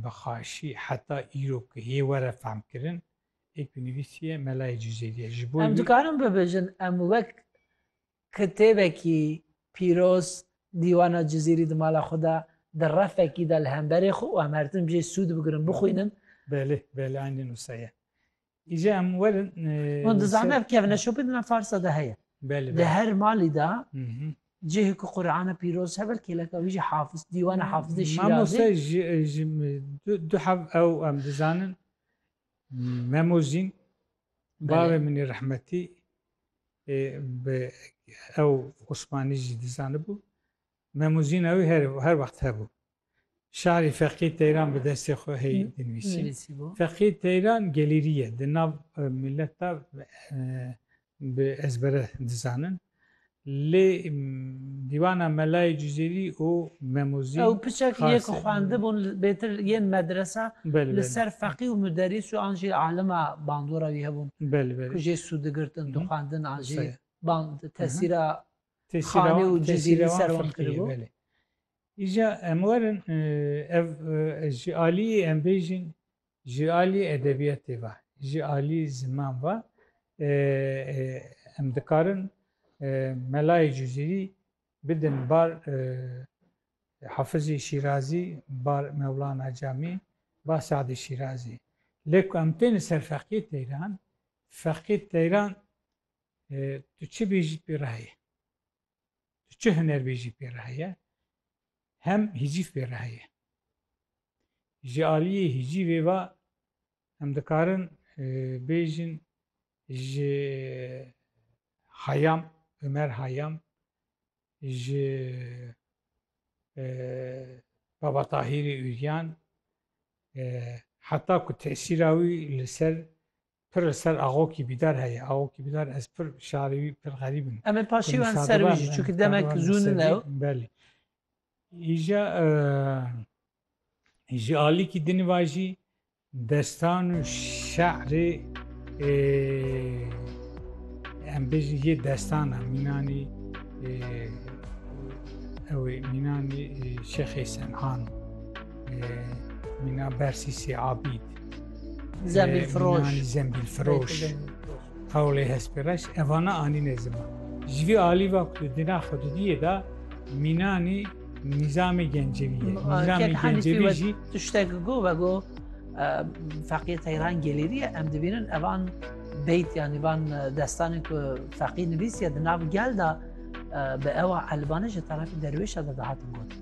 Bi xaşî heta îro ku yê were fehmkirin, ê ku nivîsiye melayê Cizêrî ye. Ji bo Em wî. dikarin bibêjin em wek kitêbekî pîroz Dîwana Cizîrî di mala xwe de di refekî de li hemberê xwe û em her tim jê sûd bigirin bixwînin? Belê, belê, eynî nûsa ye. Îca em werin. Hûn dizanin ev kevneşopê di nav Farsa de heye. Belê. Li her malî de cihê ku Qur'ana pîroz hebel kêleka wî jî hafiz dîwana hafizê şîrazê. Mamoste ji du hev ew em dizanin memozîn bavê min ê rehmetî bi ew Osmanî jî dizanibû. Memûzîna wî her her wext hebû. Şarî Feqî Teyran bi destê xwe hê dinivîsî. Feqî Teyran gelîrî ye. Di nav milet de bi ezbere dizanin. Lê dîwana Melayê Cizîrî û Memûzîn. Ew piçek yê ku xwendibûn bêtir yên medresa li ser feqî û muderîs û an jî alima bandora wî hebûn ku jê sû digirtin, dixwendin an jî band tesîra xane û cizî li ser wan kiribû. Îja em werin ev ji aliyê em bêjin ji aliyê edebiyatê ve ji aliyê ziman ve em dikarin melayê cizîrî bidin bar hafizê şîrazî bar mewlana camî bar sadê şîrazî lê ku em tên li ser feqiyê teyran feqiyê teyran Tu çi bêjî pê re heye? Tu çi huner bêjî pê re heye? Hem hîcîv pê re heye. Ji aliyê hîcîvê ve em dikarin e, bêjin ji Hayam, Ömer Hayam, ji e, Baba Tahîrê Üryan, e, heta ku tesîra wî li ser Pir li ser Axokî Bîdar heye. Axokî Bîdar ez pir şarê wî pir xerîb in. Em ê paşê wan ser wî jî çunki demek zû nin ew. Belê. Îja ji alîkî dinî va jî destan û şe'rê em bêjin yê destana mînanî ew ê mînanî Şexê Sen'an mîna Bersîsê Abîd. Zembil firoş. Zembil firoş. Tavlê hespêreş evana anîne ziman. Ji vî alî va ku di na xwedidiyê de mînanî nîzamê gencevî ye. Nîzamê gencevî jî tiştek go ve go feqîye teyran gelêrî ye em dibînin evan beyt yanî van destanê ku feqî nivîsiye di nav gel de bi ewa elvanê ji tarafê derwêşa de dihatin gotin.